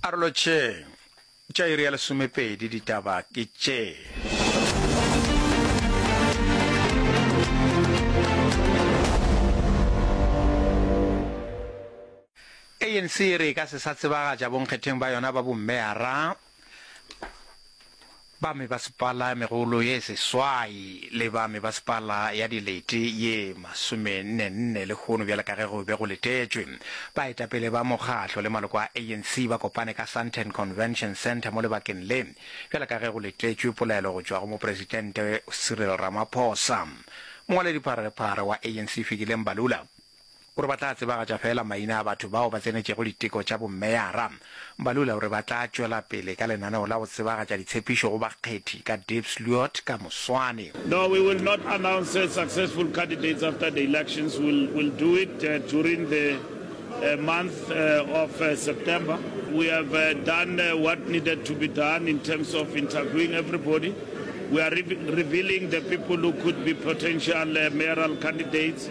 Arolo tše tša iri ya lesomepedi ditaba ke tše. ANC e re e ka se sa tsebagatša bonkgetheng ba yona ba bommeyara ba mebasepala e megolo ye seswai le ba mebasepala ya dilete ye masomennenne lehono bjale ka ge go be go letetšwe. Baetapele ba mokgatlo le maloko a ANC ba kopane ka Sandton Convention Centre mo lebakeng le bjale ka ge go letetšwe polelo go tšwa go Mopresidente Cyril Ramaphosa. Mongwaledipharephare wa ANC Fikile Mbalula O re ba tla tsebagatša feela maina a batho bao ba tsenetšego diteko tša bomeyara. Mbalula o re ba tla tšwela pele ka lenaneo la go tsebagatša ditshepišo go bakgethi ka Diepsloot ka moswane. No, we will not announce successful candidates after the elections, we'll we'll do it during the month of September. We have done what needed to be done in terms of interviewing everybody. We are revealing the people who could be potential mayoral candidates.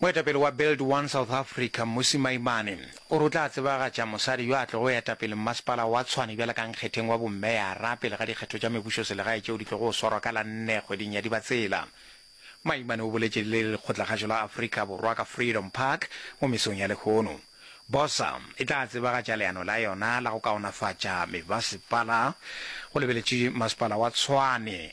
Moetapele wa Build One South Africa, Mmusi Maimane, o re o tla tsebagatša mosadi yo a tlogo eta pele mmasepala wa Tshwane bjale ka nkgetheng wa bommeyara pele ga dikgetho tša mebušoselegae tšeo di tlogo swarwa ka la nne kgweding ya Dibatsela. Maimane o boletše le lekgotlakgašo la Afrika Borwa ka Freedom Park mo mesong ya lehono. Bosa e tla tsebagatša leano la yona la go kaonafatša mebasepala go lebeletše masepala wa Tshwane.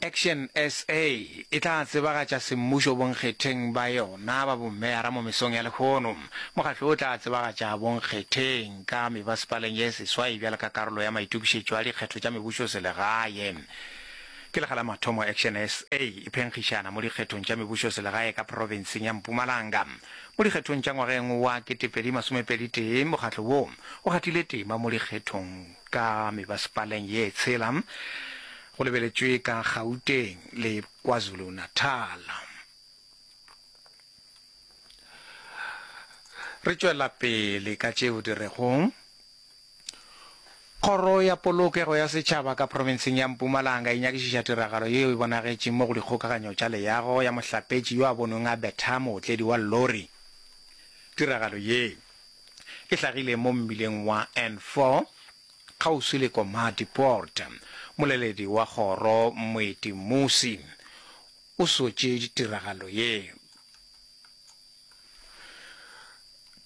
Action SA e tla tsebagatša semmušo bonkgetheng ba yona ba bommeara mo mesong ya lehono. Mokgatlo o tla tsebagatša bonkgetheng ka mebasepaleng ye seswai bjalo ka karolo ya maitokišetšo a dikgetho tša mebušoselegae. Ke lekga la mathomo Action SA e phenkgišana mo dikgethong tša mebušoselegae ka profenseng ya Mpumalanga. Mo dikgethong tša ngwageng wa ketepedi masomepedi tee, mokgatlo wo o gatile tema mo dikgethong ka mebasepaleng ye tshela. Go lebeletšwe ka Gauteng le KwaZulu-Natal. Re tšwela pele ka tšeo di rego Kgoro ya Polokego ya Setšhaba ka profenseng ya Mpumalanga e nyakišiša tiragalo yeo e bonagetšeng mo go dikgokaganyo tša leago ya mohlapetši yo a bonweng a betha mootledi wa lori. Tiragalo ye e hlagile mo mmileng wa N4 Kgauswi le Komati Poort, moleledi wa kgoro Moeti Mmusi o sotše ditiragalo ye.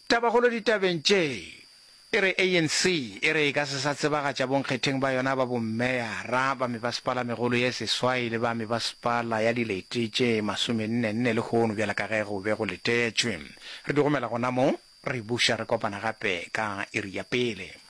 Tabakgolo ditabeng tše e re ANC e re e ka se sa tsebagatša bonkgetheng ba yona ba bommeyara ba mebasepala-megolo ye seswai le ba mebasepala ya dilete tše masomenne-nne lehono bjalo ka ge go be go letetšwe. Re di romela gona mo, re buša re kopana gape ka iri ya pele.